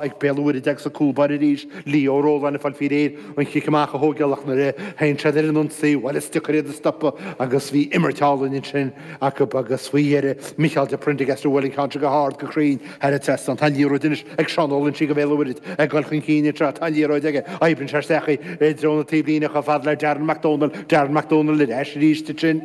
Ag Béal an Mhuirthead agus a gcúl báire arís, Leo Rowland ag fáil faoi réir an cic amach a thógáil ach nuair a théann siad ar an ionsaí, bhuel is deacair iad a stopadh agus bhí imirt álainn ansin acu agus faoi dheireadh, Micheál de Prendergast a bhuail an ceann seo go hard, go cruinn thar an trasnán. Tá an liathróid anois ag Seán Ó Loinsigh do Bhéal an Mhuirthead ag dul chun cinn anseo, tá an liathróid aige, oibríonn sé isteach i dtreo na taobhlíne chomh fada le Darren Mac Domhnaill, Darren Mac Domhnaill ar ais arís ansin.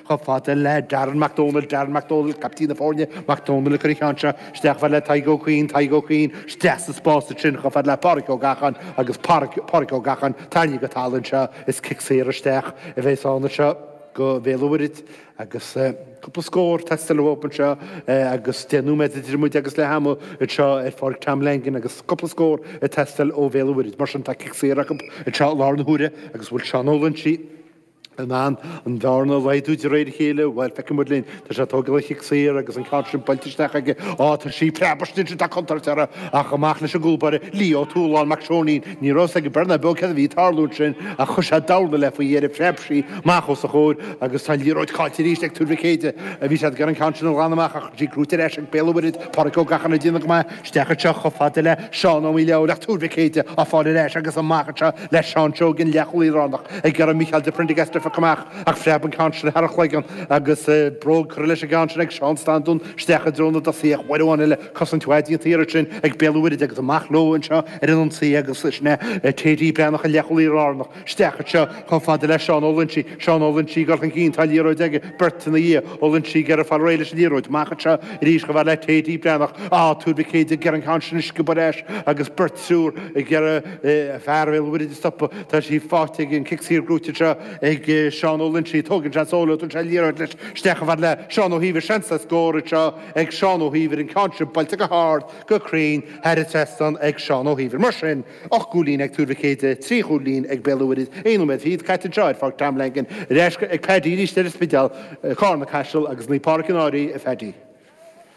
chomh fada le Darren Mac Dónaill, Darren Mac Dónaill, caiptín na foirne, Mac Dónaill a chuir an ceann seo isteach, chomh fada le Tadhg Ó Cuinn, Tadhg Ó Cuinn, isteach sa spás ansin, chomh fada le Pádraic Ó Gacháin agus Pádraic, Pádraic Ó Gacháin, tarraingthe go talamh anseo, is cic saor isteach a bheas ann anseo do Bhéal an Mhuirthead agus cúpla scór ag teastáil uathu anseo agus deich nóiméad idir muid agus leath ama anseo ar Pháirc Tom Langan agus cúpla scór ag teastáil ó Bhéal an Mhuirthead. Mar sin, tá cic saor acu anseo i láthair na huaire agus an bhfuil Seán Ó Loinsigh, In ann an bhearna a laghdú de réir a chéile, bhuel, feicimid linn, tá sé ag tógáil an chic saor agus an ceann sin buailte isteach aige, á, tá sí ag preabadh istigh ansin, tá contúirt orthu, ach amach leis an gcúlbáire, Lí Ó Tualáin, Mac Seoinín, ní raibh a fhios aige beirthe ná beo céard a bhí ag tarlú ansin, ach chuir sé dorna léi faoi dheireadh, phreab sí amach os a chomhair agus tá an liathróid caillte arís ag Tuar Mhic Éadaigh, bhí siad ag iarraidh an ceann sin a ghlanadh amach ach tá sí gnóthaithe ar ais ag Béal an Mhuirthead, Pádraig Ó Gacháin ag déanamh go maith. Isteach anseo chomh fada le Seán Ó Maolalaidh ach Tuar Mhic Éadaigh á fáil ar ais agus amach anseo le Seán Seoige an leathchúlaí lárnach ag iarraidh Micheál de Prendergast a phiocadh amach ach phreab an ceann sin thar a chloigeann agus bróg curtha leis an gceann sin ag Seán Standún isteach i dtreo na dtosaithe ach uair amháin eile cosaint mhaith déanta ansin ag Béal an Mhuirthead agus amach leo anseo ar an ionsaí agus sin é T.D. Breathnach an leathchúlaí lárnach. Isteach anseo chomh fada le Seán Ó Loinsigh, Seán Ó Loinsigh ag dul chun cinn, tá liathróid aige, beirt ina dhiaidh, Ó Loinsigh ag iarraidh fáil réidh leis an liathróid, amach anseo arís chomh fada le T.D. Breathnach, ah, Tuar Mhic Éadaigh ag iarraidh an ceann sin a sciobadh ar ais agus beirt, triúr ag iarraidh fear Bhéal an Mhuirthead a stopadh, tá sí faighte aige, an cic saor gnóthaithe anseo ag Seán Ó Loinsigh, tógann sé an solo, tugann sé an liathróid leis isteach chomh fada le Seán Ó hÍomhair, seans le scór anseo ag Seán Ó hÍomhair, an ceann sin buailte go hard, go cruinn, thar an trasnán ag Seán Ó hÍomhair, mar sin. Ocht gcúilín ag Tuar Mhic Éadaigh, trí chúilín ag Béal an Mhuirthead, aon nóiméad fichead caite anseo ar Pháirc Tom Langan, ar ais ag Paddy arís ar an Spidéal, Carna-Caiseal agus Naomh Pádraig An Fhairche, a Phaddy.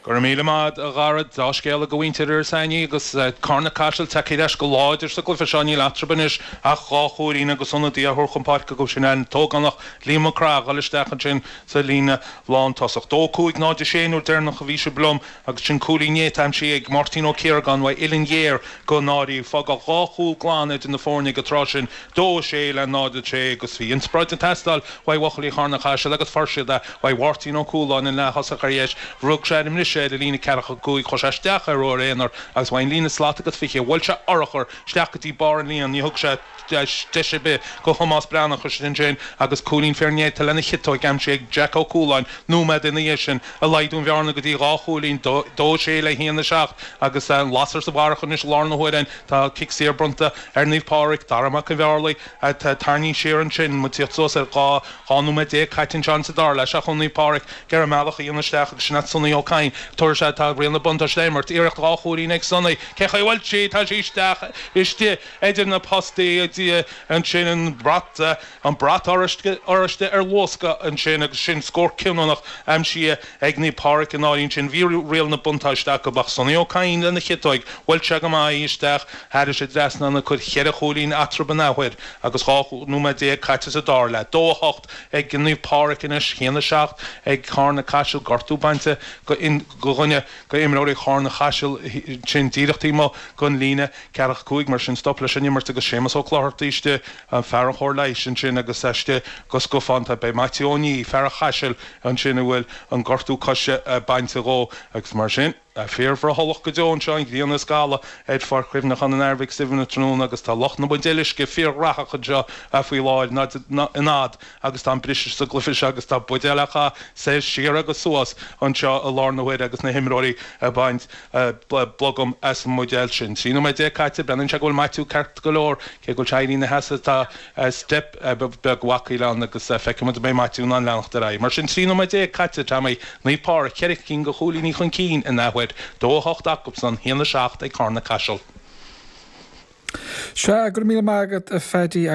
Go raibh míle maith, a Dhara. Dea-scéal do mhuintir Iorras Aithneach agus Carna-Caiseal tagtha ar ais go láidir sa gcluiche seo. Níl eatarthu anois ach dhá chúilín agus ionadaí á thabhairt chun páirce dóibh sin, an t-ógánach Liam Mac Craith, ag goil isteach ansin sa líne lántosach. Dó cúig, náid a sé nuair deireanach a bhí sibh liom agus sin cúilín néata aimsithe ag Máirtín Ó Ciaragáin uaidh uillinn ghéar don Fhairche. Fágadh dhá chúl glan idir na foirne ag an tráth sin, 2-6 le 0-6, agus bhí inspioráid ag teastáil uaidh bhuachaillí Charna Chaisil agus fuair siad é uaidh Mháirtín Ó Cualáin an leath thosach ar dheis nuair a rug sé ar an mbriseadh ar an líne ceathracha cúig, chuaigh sé isteach ar ruathar aonair agus uaidh an líne slat agus fiche. Bhuail sé urchar isteach go dtí barr an líon. Ní thug sé. deis ar bith do Thomás Breathnach, ansin féin agus cúilín fíornéata lena chiotóig aimsithe ag Jack Ó Cualáin nóiméad ina dhiaidh sin, a laghdaigh an bhearna go dtí dhá chúilín, dó a sé le haon a seacht, agus an lasair sa bharrach anois i lár na huaire ann. Tá cic saor bronnta ar Naomh Pádraig, Dara Mac an Bhearlaigh, tarraingthe siar ansin, muid ag tíocht suas ar dhá, dhá nóiméad déag caite anseo sa dara leath, ach ó Naomh Pádraig ag iarraidh a mbealach a dhéanamh isteach agus sin é Sonny Ó Cadhain, tabhair is ea tá riail na buntáiste á imirt, iarracht dhá chúilín ag Sonny, cén chaoi a bhfuil sí? Tá sí isteach istigh. Idir na postaí a d'fhill ansin, an brat, an brat oráiste ar luascadh ansin agus sin scór cinniúnach aimsithe ag Naomh Pádraig i ndáiríre ansin, bhí riail na buntáiste acu ach Sonny Ó Cadhain lena chiotóig, bhuail sé go maith í isteach thairis an trasnán ag cur cheithre chúilín eatarthu an athuair agus 12 nóiméad caite sa dara leath. Dó a hocht ag Naomh Pádraig anois, haon a seacht ag Carna-Caiseal, gortú bainte go dhuine, go imreoirí Charna-Caiseal ansin díreach taobh amuigh den líne ceathracha cúig, mar sin stop leis an imirt agus Séamus Ó Clochartaigh istigh, fear an chóir leighis, ansin agus istigh go scafánta beidh Maitiú Ó Niaidh, fear an Chaisil ansin a bhfuil an gortú coise bainte dhó agus mar sin fíorbhrothallach go deo anseo, an ghrian ag scaladh ar Pháirc Chuimhneacháin an Athar Mhic Suibhne tráthnóna agus tá lucht na mbuidéal uisce fíorghraitheach anseo faoi láthair, in ionad agus tá an briseadh sa gcluife seo agus tá buidéil á gcaitheamh soir siar agus suas anseo i lár na huaire agus na himreoirí ag baint blogam as an mbuidéal sin. Trí nóiméad déag caite, breathnaíonn sé go bhfuil Maitiú ceart go leor, cé go bhfuil sé ag éirí ina sheasamh tá steip bheag bhacaíl ann agus feicfimid an mbeidh Maitiú in ann leanacht ar aghaidh. Mar sin trí nóiméad déag caite, Tommy, Naomh Pádraic ceithre cinn go chúilíní chun cinn in athuair, dó a hocht acusan, haon a seacht ag Carna-Caiseal. Sea, go raibh míle maith agat a Phaddy agus.